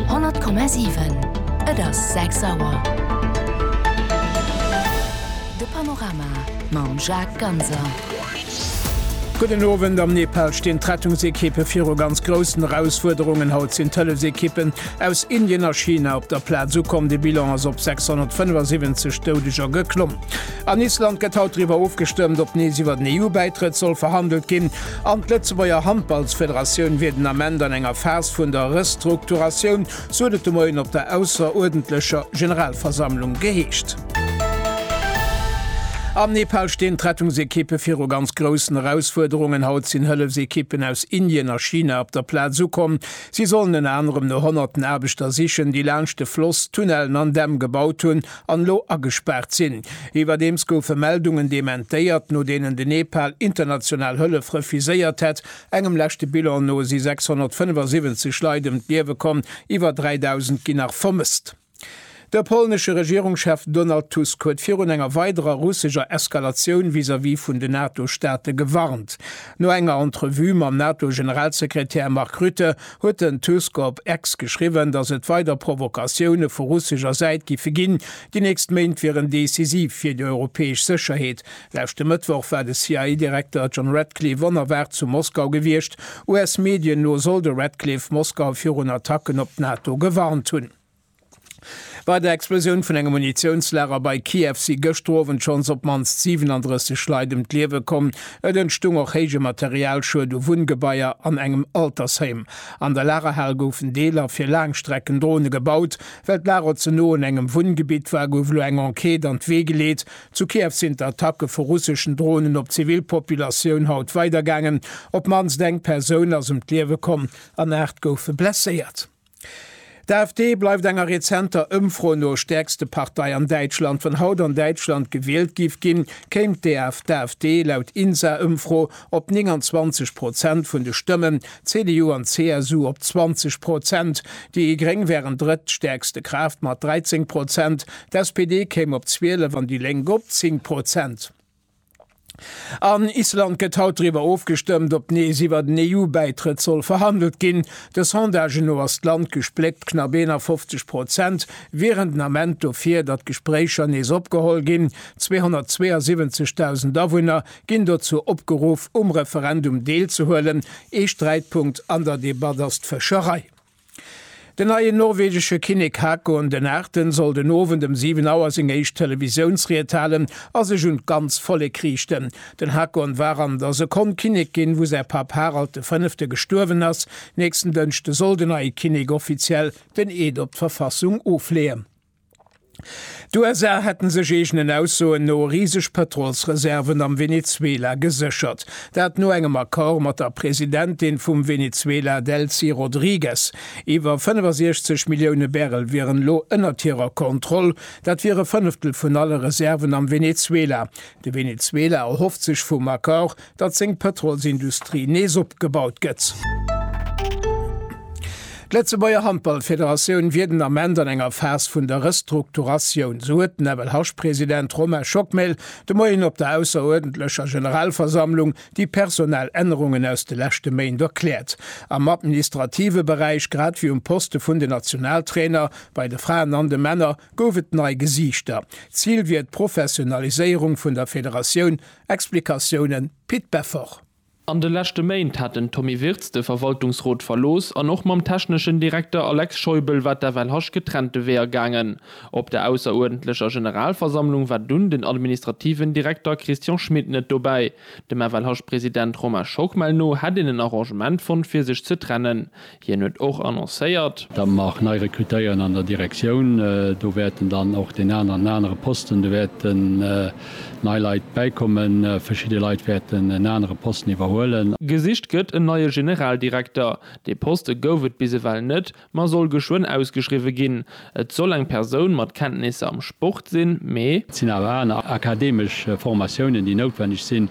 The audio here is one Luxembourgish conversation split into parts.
100,7. Et ass 6 Auer. De Panorama mam Jacques Ganser. Gudden Owend. Am Nepal stinn d'Rettungsekippe viru ganz groussen Erausfuerderungen. Haut sinn d'Hëllefsekippen aus Indien a China op der Plaz ukomm. De Bilan ass op 675 Doudeger geklomm. An Island gëtt haut driwwer ofgestëmmt, ob nees iwwer den EU-Bäitrëtt soll verhandelt ginn. An d'Lëtzebuerger Handballsfederatioun wier den Ament an enger Phas vun der Restrukturatioun, sou huet et de Moien op der ausseruerdentlecher Generalversammlung geheescht. Am Nepal stinn d'Rettungsekippe viru ganz groussen Erausfuerderungen. Haut sinn Hëllefsekippen aus Indien a China op der Plaz ukomm. Si sollen ënner anerem no honnerten Aarbechter sichen, déi laanscht de Floss Tunnellen an Dämm gebaut hunn, an elo agespaart sinn. Iwwerdeems goufe Meldungen dementéiert, no deenen de Nepal international Hëllef refuséiert hätt. Engem leschte Bilan no si 675 Leit ëm d'Liewe komm, iwwer 3.000 ginn nach vermësst. De polnesche Regierungschef Donald Tusk huet virun enger weiderer russescher Eskalatioun vis-à-vis vun den NATO-Staate gewarnt. No enger Entrevue mam NATO-Generalsekretär Mark Rutte huet den Tusk op X geschriwwen, datt et weider Provokatioune vu russescher Säit giffe ginn. Déi nächst Méint wieren decisiv fir déi europäesch Sécherheet. Leschte Mëttwoch war de CIA-Direkter John Ratcliffe onerwaart zu Moskau gewiescht. US-Medien no soll de Ratcliffe Moskau virun Attacken op d'NATO gewarnt hunn. Bei der Explosioun vun engem Munitiounslager bei Kiew si gëschter Owend schonns op d'mannst 37 Leit ëm d'Liewe komm. Et entstung och héije Materialschued u Wunngebaier an engem Altersheim. An der Lagerhal goufen Deeler fir Laangstreckendrone gebaut. Well d'Lager ze no un engem Wunngebitt war, gouf elo eng Enquête an d'Wee geleet. Zu Kiew sinn d'Attacke vu russeschen Dronen op d'zivil Populatioun haut weidergaangen. Op d'mannst eng Persoun ass ëm d'Liewe komm an 8 goufe blesséiert. D'AfD bleift enger rezenter Ëmfro no stäerkste Partei an Däitschland. Wann haut an Däitschland gewielt giff ginn, kéim d'AfD laut INSA-Ëmfro op 29 Prozent vun de Stëmmen, d'CDU an d'CSU op 20 Prozent. Déi Gréng wären drëtt stäerkste Kraaft mat 13 Prozent, d'SPD kéim op 12 an déi Lénk op 10 Prozent. An Island gëtt haut driwwer ofgestëmmt, ob nees iwwert en EU-Bäitrëtt soll verhandelt ginn. De Sondagen no ass d'Land gespléckt, knapp 51 Prozent wieren den Ament dofir, datt d'Gespréicher nees opgeholl ginn. 272.000 Awunner ginn dozou opgeruff, um Referendum deelzehuelen. Ee Sträitpunkt an der Debatt ass d'Fëscherei. Den neien norwegesche Kinnek Haakon den Aachten soll den Owend ëm 7 Auer seng éischt Televisiounsried halen a sech un d'ganz Vollek riichten. Den Haakon war an der Sekonn Kinnek ginn, wou säi Papp Harald de Fënnefte gestuerwen ass. Nächsten Dënschde soll den neie Kinnek offiziell den Eed op d'Verfassung ofleeën. D'USA hätten sech eegenen Aussoen no riseg Pëtrolsreserven am Venezuela geséchert. Dat no engem Accord mat der Presidentin vum Venezuela Delcy Rodriguez. Iwwer 65 Millioune Barrel wieren elo ënnert hirer Kontroll. Dat wier e Fënneftel vun alle Reserven am Venezuela. De Venezuela erhofft sech vum Accord, datt seng Pëtrolsindustrie nees opgebaut gëtt. D'Lëtzebuerger Handballfederatioun wier den Ament an enger Phas vun der Restrukturatioun, sou huet den FLH-President Romain Schockmel de Moien op der ausseruerdentlecher Generalversammlung déi personell Ännerungen aus de leschte Méint erkläert. Am administrative Beräich, grad ewéi um Poste vun den Nationaltrainer, bei de Fraen an de Männer, gouf et nei Gesiichter. Zil wier d'Professionaliséierung vun der Federatioun, Explikatiounen, Pit Beffort. An de leschte Méint hat den Tommy Wirtz de Verwaltungsrot verlooss an och mam techneschen Direkter Alex Scheubel war d'FLHasch getrennte Weeër gaangen. Op der ausseruerdentlecher Generalversammlung war dunn den administrativen Direkter Christian Schmit net dobäi. Dem FLHasch-President Romain Schockmel no hätt een en Arrangement fonnt fir sech ze trennen. Hien huet och annoncéiert. Datt mer nei rekrutéieren an der Direktioun. Do wäerten dann och deen an an anere Posten, do wäerten nei Leit bäikommen. Verschidde Leit wäerten en anere Posten iwwerhuelen. Gesicht gëtt en neie Generaldirekter. Dee Poste gouf et bis ewell net, ma soll geschwënn ausgeschriwwe ginn. Et soll eng Persoun mat Kenntnisser am Sport sinn, mee. Et sinn awer aner akademesch Formatiounen, déi noutwenneg sinn,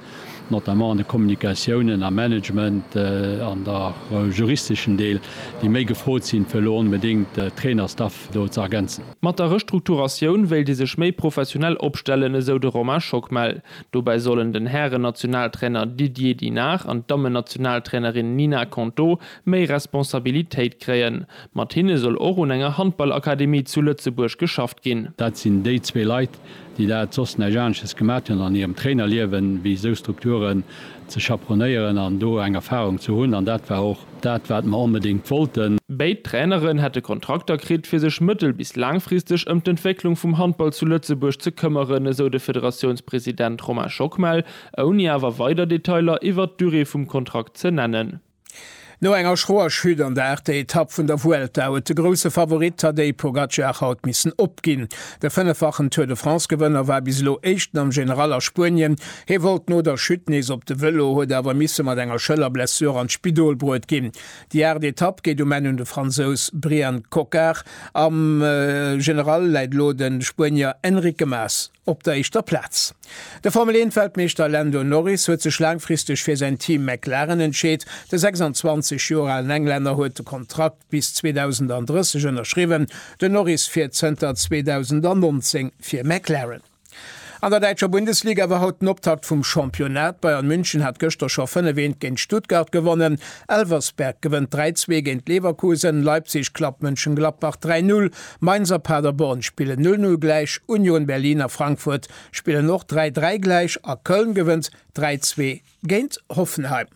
notamment an de Kommunikatiounen, am Management, an der juristeschen Deel, déi méi gefrot sinn, fir elo onbedéngt de Trainerstaff do ze ergänzen. Mat der Restrukturatioun wéilt ee sech méi professionell opstellen, esou de Romain Schockmel. Dobäi sollen den Hären-Nationaltrainer Didier Dinard an d'Dammen-Nationaltrainerin Nina Konto méi Responsabilitéit kréien. Mat hinne soll och un enger Handballakademie zu Lëtzebuerg geschafft ginn. Dat sinn déi zwee Leit, déi dat soss näischt anesches gemat hunn an hirem Trainerliewen, wéi esou Strukturen ze chaperonéieren an do eng Erfarung ze hunn. An dat war och dat, wat mer onbedéngt wollten. Béid Traineren hätte Kontrakter kritt, fir sech mëttel bis laangfristeg ëm d'Entwécklung vum Handball zu Lëtzebuerg ze këmmeren, esou de Federatiounspresident Romain Schockmel, ouni awer weider Detailer iwwert d'Durée vum Kontrakt ze nennen. No enger schroer Chute an der achter Etapp vun der Vuelta huet de grousse Favorit Tadej Pogacar haut missen opginn. De fënneffachen Tour de France-Gewënner war bis elo Éischten am General a Spuenien. Hie wollt no der Chute nees op de Vëlo, huet awer misse mat enger Schëllerblessur an d'Spidol bruet ginn. Déi aacht Etapp geet um Enn un de Fransous Brian Cocard. Am General läit elo de Spuenier Enrique Mas. op der éischter Plaz. De Formel 1 Weltmeeschter Lando Norris huet sech laangfristeg fir säin Team McLaren entscheet. De 26 Joer alen Englänner huet de Kontrakt bis 2030 ënnerschriwwen. Den Norris fiert zënter 2019 fir McLaren. An der däitscher Bundesliga war haut den Optakt vum Championnat. Bayern München hat gëschter scho 5 Eent géint Stuttgart gewonnen. Elversberg gewënnt 3 Zwee géint Leverkusen. Leipzig klappt Mönchengladbach 3 Null. Mainz a Paderborn spillen 0, 0 gläich, Union Berlin a Frankfurt spillen och 3, 3 gläich a Köln gewënnt 3, 2 géint Hoffenheim.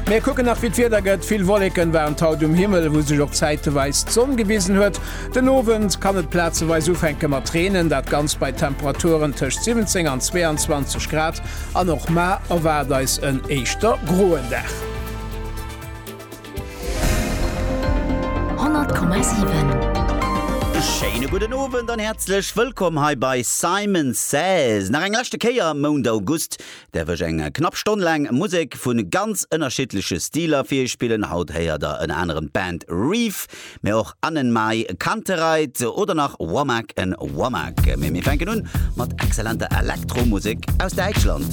Mir kucken nach wéi d'Wieder gëtt, vill Wolleken waren d'haut um Himmel, wou sech och zäiteweis d'Sonn gewisen huet. Den Owend kann et plazeweis ufänke mat reenen, dat ganzt bei Temperaturen tëscht 17 an 22 Grad an och mar erwaart eis en éischter groen Dag. Schéine gudden Owend an häerzlech wëllkomm hei bei Simon Says. Nach eng leschte Kéier Mount August däerf ech eng knapp Stonn laang Musek vu ganz ënnerschiddleche Stiler fir iech spillen. Haut héiert der ënner anerem d'Band Reef, mee och Annenmai Kantereit oder nach Womack and Womack. Mee mir fänken un mat exzellenter Elektromusek aus Däitschland.